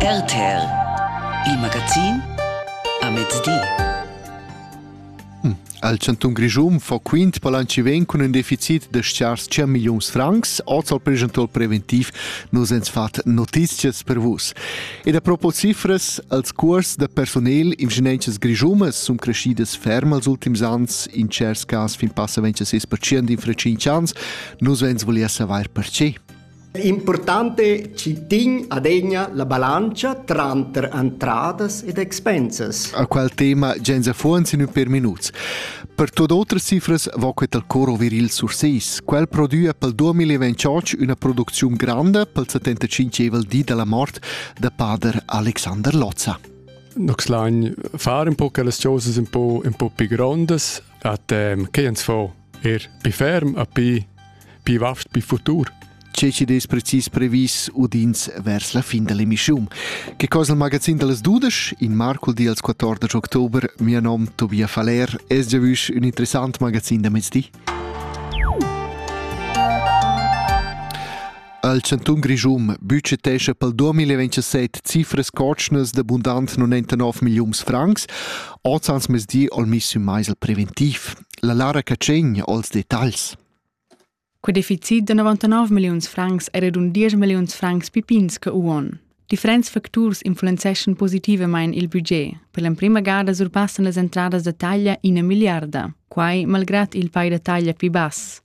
RTL, il magazin a mezdi. Hm, al Cantun Grischun fa quint palanci ven cun un deficit de schars 5 millions francs, oz al presentual preventiv nus ens fat notizias per vus. Ed a propos cifras, als curs de personel ingegnences grischumas sun crescidas ferm als ultims ans, in cers cas fin passa 26% in fra 5 ans, nus ens volia saver perché. L'impurtante citin adegna la balancia tranter entradas ed expensas. A qual tema gens affons in per minuts. Per tot otras cifras va quet al coro viril sur seis. Quel produia pel 2028 una producziun grande pel 75evel di della mort de pader Alexander Lozza. Nox lain far un po quellas cosas un po, un po più grandes, a tem, che ens fa Er pi ferm a pi, pi vaft, pi futur. Che ci des precis previs udins vers la fin dell'emissione. Che cosa il magazin delle dudesch in Marco di als 14 october, mio nome Tobias Faller, es già vusch un interessant magazin da mezdi. Al Cantun Grischum budgetescha pel 2027 cifras cotschnas d'abundant 99 millions francs, oz ans mezdi al miss un meisel preventiv. La Lara Catschegn als detagls. Quei deficit de 99 milliuns francs era dun 10 milliuns francs pipins che uon. Differents facturs influenzeschan positivamain il budget. Per l'emprima gada surpassan las entradas da taglia ina miliarda, quai malgrad il pay da taglia più bass.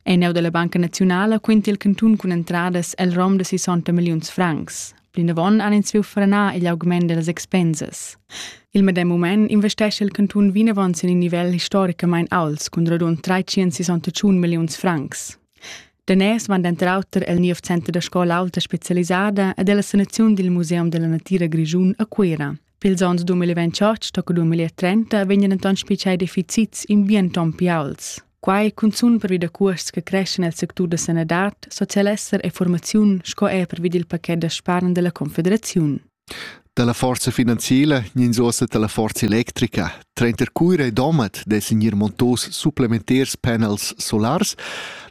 En neu dalla Banca Naziunala quinta il cantun cun entradas el rom da 60 milliuns francs. Plinavon han ins viu frenar igl augment dellas expensas. Il medem mument investesce il cantun vinavon sin in nivel historicamein alts cun radund 361 milliuns francs. Daners van denter auter el niev center da scola alta specialisada ed ella sanaziun dil Museum della Natira Grischun a Cuera. Pils onns 2028 tocca 2030 vegnan denton spitschai deficits ambienton più alts. Quai cunzun pervi da cuosts che creschen nel sectur da sanadad, socialesser e formaziun sco er pervi dil paquet da spargn della Confederaziun. Dalla forza finanziela ins uossa dalla forza electrica. Trenter cuira e domat dessen ir montos supplementars panels solars.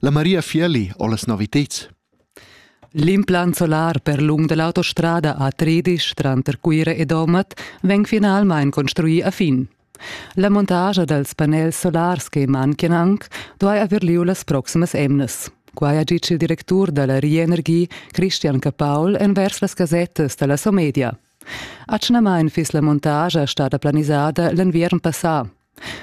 La Maria Fielli ho las noviteds. L'implant solar per lung dall'autostrada a Tredisch tranter Cuira e Domat vegn finalmein construì a fin. La montascha dals panels solars che manchian anc duai haver lieu las proximas emnas. Quai ha ditg il directur da la Rienergie, Christian Capaul, envers las gasettas da la Somedia. Atgnamain fiss la montascha stada planisada l'enviern passà.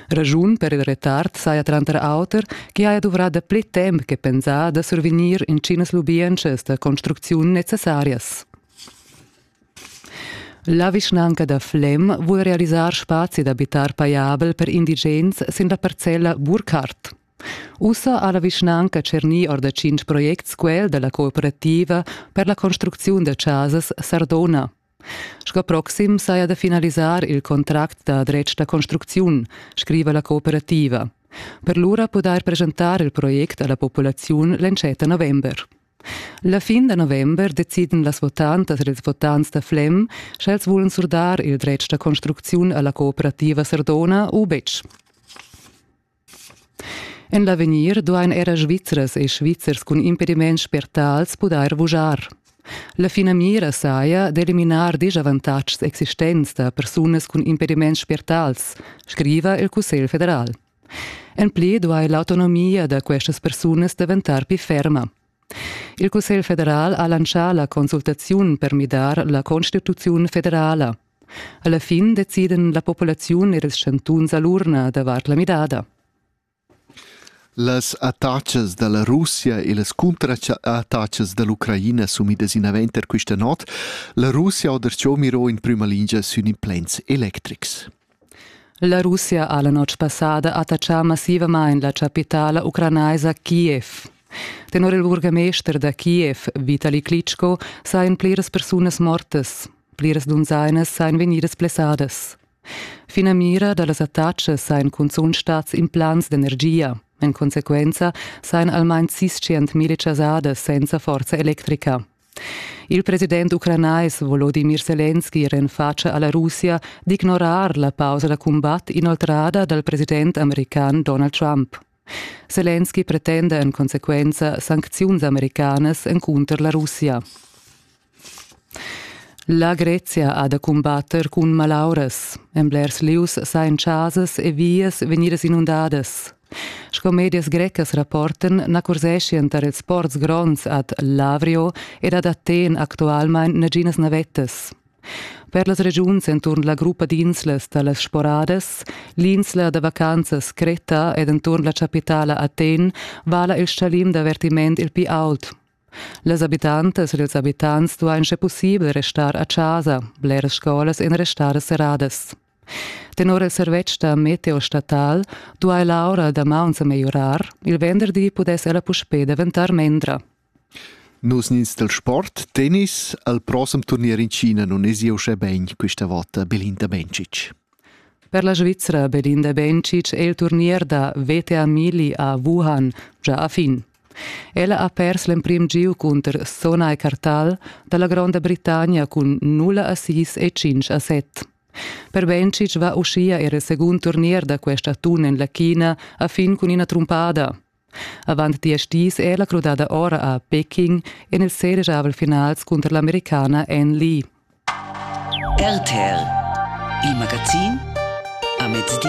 Raschun per il retard saja tranter auter ch'i haja duvrà dapli temp che pensà da survegnir intginas lubientschas da construcziun necessarias. La vischnanca da Flem vul realisar spazi d'abitar pajabel per indigens sin la parcella Burkhardt. Ussa ha la vischnanca tschernì or da tschintg projects quel da la cooperativa per la construcziun da chasas Sardona. Sco proxim saja da finalisar il contract da dretg da construcziun, scriva la cooperativa. Per lura pudair presentar il project a la populaziun l'entschet november. La fin da november deciden las votantas ed ils votants da Flem, sch'els vulan surdar il dretg da construcziun a la cooperativa Sardona u betg. En l'avegnir duain era Svizras e Svizzers cun impediments spertals pudair vuschar. La finamira saja d'eliminar disavantatgs existents da persunas cun impediments spertals, scriva il Cussegl federal. En pli duai l'autonomia da questas persunas daventar pli ferma, Il Cussegl federal ha lantschà la consultaziun per midar la constituziun federala. Alla fin deciden la populaziun ed ils chantuns a l'urna davart la midada. Las attacas da la Russia e las cunterattacas da l'Ucraina sumidas inavant er questa not. La Russia ha derciò miro in prima lingia sün implants electrics. La Russia ha la notg passada attachà massivamain la chapitala ucranaisa Kiev. Tenor il burgamester da Kiev, Vitali Klitschko, sajan pliras persunas mortas. Pliras dunzainas sajan vegnidas blessadas. Finamira da las attacas sajan cunzunt stads implants d'energia. En consequenza sajan almain sis 100.000 chasadas senza forza electrica. Il president ucranais Volodimir Selenski renfatscha a la Russia d'ignorar la pausa da cumbat inoltrada dal president american Donald Trump. Selenski pretenda en consequenza sancziuns americanas encunter la Russia. La Grezia ha da cumbatter cun malauras. En blers lieus sajan chasas e vias vegnidas inundadas. Sco medias grecas rapportan na curseschien tar ils ports gronds ad Lavrio ed ad Athen actualmain naginas navettas. Per las regiuns enturn la gruppa d'inslas da las Sporadas, l'insla da vacanzas Creta ed enturn la chapitala Athen vala il stalim d'avertiment il pli ault. Las abitantas ed ils abitants duain sche pussibel restar a chasa, bleras scolas en restadas serradas. Tenor il servetsch da meteo statal duai l'aura da maun sa megliorar, il venderdi pudess ella puspè daventar mendra. Nus nins del sport, tennis, al prossem turnier in China non es io uschè ben questa volta Belinda Bencic. Per la Svizzera Belinda Bencic è il turnier da VTA Mili a Wuhan già a fin. Ella ha pers l'emprim giu cunter Sona e Cartal dalla Gronda Britannia cun 0 a 6 e 5 a 7. Per Bencic va uschia era il secund turnier da quest atun en la China a fin cun ina trumpada. Avant diesch dis è ella crudada ora a Peking en il seregiavel finals cunter l'americana Ann Lee. RTL Il magazin a mezdi.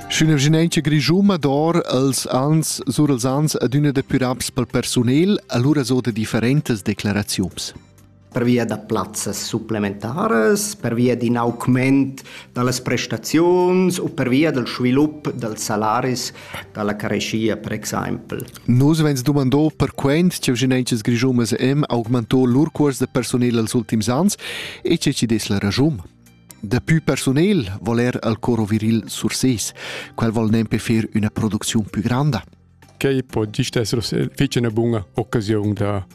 Sch'ün'evgenentscha grischuma dor els ans sur els ans ad üna depuraps pel persunel, allura so da differentas declaraziuns. per via da plazzas supplementaras, per via d'in augment da las prestaziuns u per via dal svilup dals salaris dalla careschia per exempel. Nus vegns dumando perquent che vischinanzas grischumas em augmento lur cuors de personel els ultims ans e che ci des la ragium. Daplü personel vol er al coro viril Surses. Quel vol nempe fer üna producziun più granda. Quei po gist essere fece una buona occasione da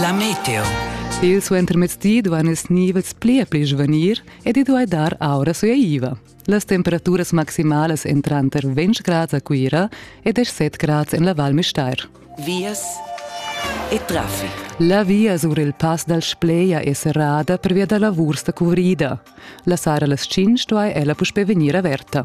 La meteo. Il suentermezdi duan ils nivels pli e pli svanir ed i duai dar aura suaiva. Las temperaturas maximalas èn tranter 20 grads a Cuira e 17 grads en la Val Müstair. Vias e traffic. La via sur il pass dal Spleia è serrada pervia da lavurs da cuvrida. La sara las 5 duai ella puspè vegnir averta.